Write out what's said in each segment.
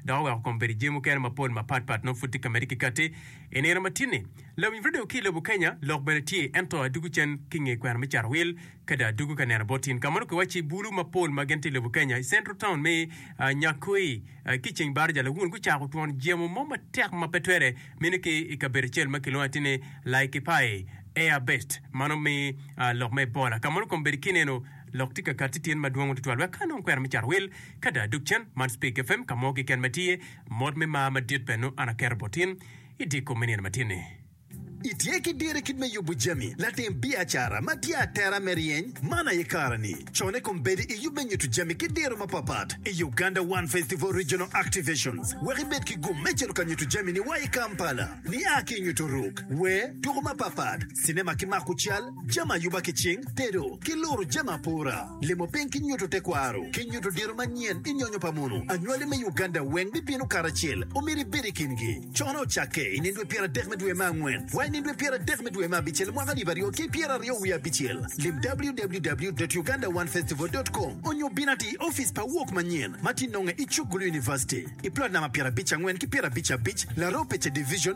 dok oweko kom bedo i jami mukene mapol mapat pat nongo pud tye ka medde ki kati. I nino matini, lawiny radio ki i lobo Kenya lok bene tye, ento adwogo cen ki nge kwena me cato wil kadi adwogo ka neno bot in. Ka mono kiwacci i bulu mapol ma gin tye i lobo Kenya, i central town me Nyakoi ki i ceng baraja lawun gucako twon jemo mo matek ma pe twere mine ki i kabedo acel ma kilwongo atir ni Laikipae Air Base ma nongo me lok me Ebola. Ka mono kom bedo kineno, Lok tika kati tyen madwongo tutwal wek ka anong kwera me cato wil kada adok cen? Man Speak FM ka mo keken ma tye mot me mar madit bene nongo an aketo bot in i dye kom me nino matin ni. Itye ki diro i kit me yubu jami latim biacara ma tye atera me ryeny man aye kare ni. Con i kom bedo i yub me nyutu jami ki diro mapapat i Uganda One Festival Regional Activations wek ibed ki gum me cito ka nyutu jami ni wa i Kampala. Ni a ki i nyutu ruk, wer, tuku mapapat, cinema ki mako cal, jami ayuba ki cing, tedo, ki luro jami apora, limo piny ki nyuto tekwaro, ki nyuto diro manyen i nyonyo pa munu. Anywali me Uganda weng bibino karacel. Omyero ibed i kingi. Cone ocakke i nino dwe pyeradek me dwe me angwen wa i nino dwe pyeradek me dwe me abicel mwaka alip aryo ki pyera aryo wiye abicel. Lim www.ugandaonefestival.com onyo bin ati i ofice pa Wok Manyen ma tye nonge i Chukgulu University, i plot namba pyerabic angwen ki pyerabic abic, Laropecha Division,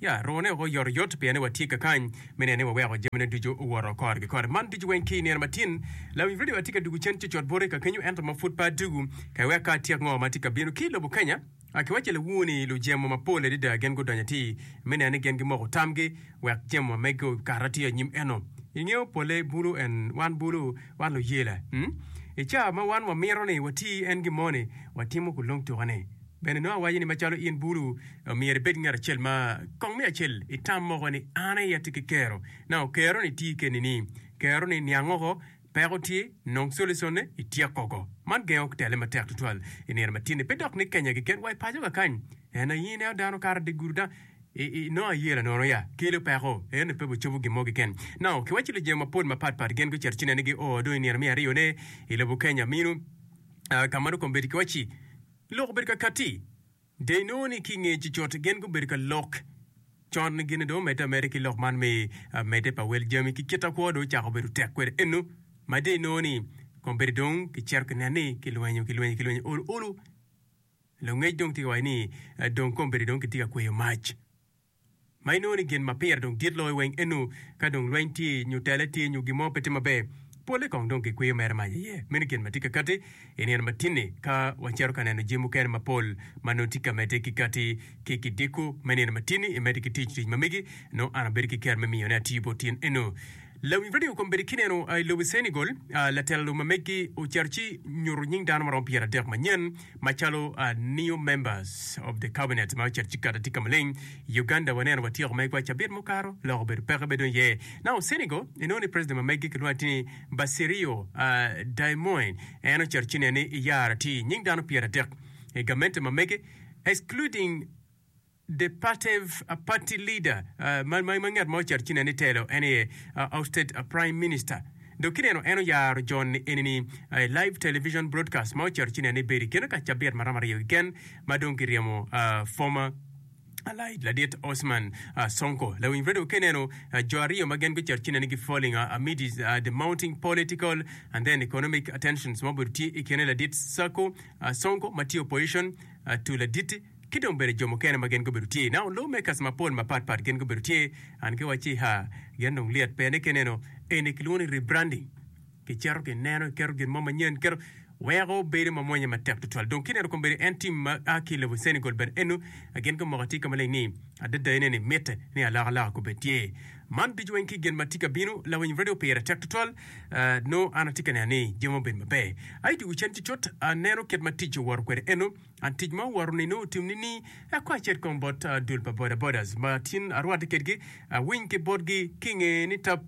Ya, rwone woko oyotoyot, pien ni watye kakany me neno ni waweko jamine ducu owoto kore ki kore. Man ducu weng ki i nino matin. Lawiny redio aye tye ka dugo cen cocot boti ka kenyo ento ma pud pe adugu ka iwek ka atyek ngo ma tye ka bino ki i lobo Kenya. Akiwaco lawur ni lujemo mapol adada gin gudonyo atir me neno ni gin gimoko tamgi wek jemo ma megi okato atir anyim eno. Ingeyo pole bulu en wan bulu wan luyela. Hum. I cawa ma wan wamito ni wati en gin mo ni watimo kulong tuka ni. Bene nongo awaco ni macalo in bulu myero ibed ki ngat acel ma kong me acel i tam moko ni an aye atye ki kero. Nongo kero ni tye keni ni kero ni niang oko, peko tye, nong solisone, ityek koko. Man gengo tele matek tutwal i nino matin ni pe dok ni Kenya keken wa i paco kakany. En aye ineno dano kato dye gudu dang i nongo aye lanono ya kelo peko ento pe wacobo gin mo keken. Nongo kiwaco ni lujemo mapol mapat pat gin gucito cinene gi oo dong i nino me aryo ne i lobo Kenya minu ka ma nongo kombedo kiwaci. Lok obedo ka katti. Dee inongo ni ki i nge cicot gin gubedo ka lok. Con gin dong omedde ameda ki lok man me medde pa wel jami ki kite kwo dong ocako bedo tek kwede eno ma dee inongo ni kombeddi dong ki cito ki nen ni ki lwenyo ki lwenyo ki lwenyo olu olu. Lungec dong tye ka waco ni dong kombeddi dong kitye ka kweyo mac. ma inongo ni gin ma pire dong dit loyo weng enu ka dong lweny tye nyo tele tye nyo gin mo pe tye maber, polle kong dong gikwiyo mere mac iye. Meno gin ma tye ka kati i nino matinni ka wacito ka neno jami mukene mapol ma nongo tye ka medde ki kati ki kidiko me nino matinni imedde ki tic tic ma megi, nongo an abedo ki ker me miyone atir bot tyen enu. Lawi radio kombeddi kineno a i lobi Senegal a latela lobi ma meggi ocito ci nyuto nying dano maromo pyer adek manyen macalo a new members of the cabinet ma ocito ci kati tika maleng i Uganda waneno watyeko megwa cabit mukato lok obedo peke be dong iye now Senegal inongo ni president ma meggi kilwongo ati ni Bassirio a Diomoin en ocito ci nene ni iyara ti nying dano pyer adek i gamente ma mege excluding The partyv a party leader ma ngat ma oceto cine ni telo en aye ousted a prime minister. Dok kineno en oyaro jon ni eni ni a live television broadcast ma oceto cine ni bedo i keno ka cabit ma romo aryo keken ma dong ki ryemo a former allied ladit Osman a Sonko. Lawiny radio kineno a jo aryo ma gen guceto cine ni gi falling a amid a the mounting political and then economic a tensions ma obedo tye i kene ladit Sako a Sonko ma tye opposition a to ladit Ki dong bene jo mukene ma gin gubedo tye i Naonloo me kaci mapol mapat pat gin gubedo tye an ki wacci ha gin dong lyet pene ki neno eni kilwongo ni rebranding ki ceto ki neno ki keto gin mo manyen keto weko bedo ma mwonya matek tutwal dong ki neno kong bene en team ma a ki level Senegal bene eno gin gumoko atye ka maleng ni adada ene ni mitte ni alaka alaka kubed tye man ducu weng ki gin ma tye ka bino lawiny radio pire tek tutwal noo an atye ka neno ni jami obedo maber ayi dye ocen cucut aneno kit ma tic owoto kwede eno An tic ma owoto nino otim ni ni akwa acit kong bot dul pa boda bodas ma tin arwate kedgi awiny ki botgi ki nge ni tap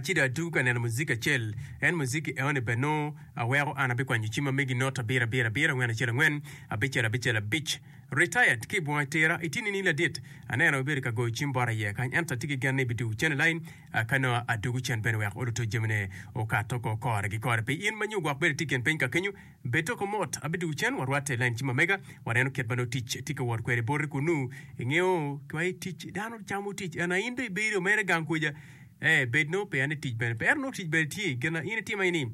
ci do atugu ka neno muziki acel en muziki eoni ber nongo aweko an abikwanyo cima me gi not abira abira abira angwen acel angwen abicel abicel abic retired ki bunga itira iti ni ni ladit aneno ibedo ka goyo cim bot aye kany ento ati ki gen ni bidugu cen ilain ka nongo adugu cen bene wek oluto jamine okato ko kore gi kore pi in ma nyo gwok bene iti gen piny ka kenyo Bed doko mot, abiduku cen warwat i lain cima mega, waneno kit ma nongo tic tye ka wot kwede i boti kunnu. Ingeyo, twai tic, dano camo tic, ento in dong ibedo mere gang kweja. Ee, bed nongo peya ni tic bene pe, ento nongo tic bene tye. Gin ma in itimo aye ni,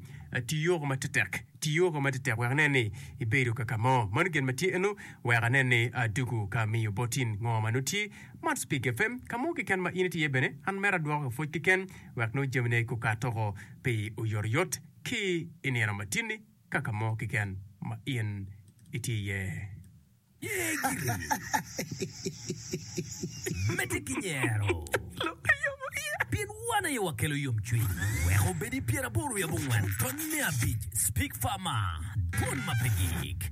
Ti yoko ma tetek, ti yoko ma tetek wek inen ni ibedo ka ka mo. Mano gin ma tye ennu, wek anen ni aduku ka miyo botin ngo ma nongo tye. Man Spig FM. Ka mo keken ma in itye iye bene, an mera adwoko ki pwoc keken, wek nongo jamine gukat oko pi oyotoyot. ki i nino matini ka ka mo keken ma in itye iye. Ye giri medde ki nyero, pien wan aye wakelo yomcwiny. Wek obed i pyeraboro i abongwen tony me abic, Speak Farmer, dwon ma pe gik.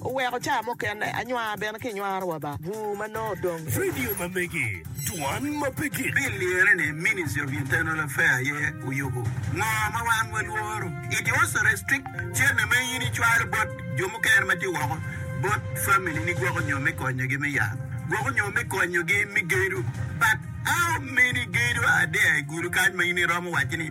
Oweko caa mukene anywar bene ki nywaro wa ba bur ma nongo odong. Radio ma megi, dwan ma pe gik. Bill liyere ni Ministry of Internal Affair aye oyubo ngo ma wan walworo. It also restrict cene ma in icwalo bot jo mukene ma tye woko bot family ni gwoko nyo me konyo gi me yalo, gwoko nyo me konyo gi me gedo but how many gedo are there i gudo kany ma in iromo waci ni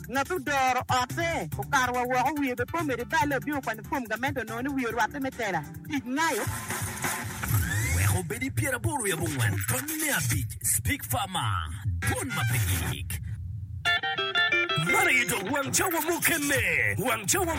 Ngat odoro otte okato wa woko, wiye bene pe omedo i balle, obino kwanyo fom gamente onongo ni wiye orwatte me tela. Tic ngayo. Wek obed i pyeraboro i abongwen tony me abic, Speak Farmer, Dwon ma pe gik. Man aye dok wang cawa mukene. Wang cawa.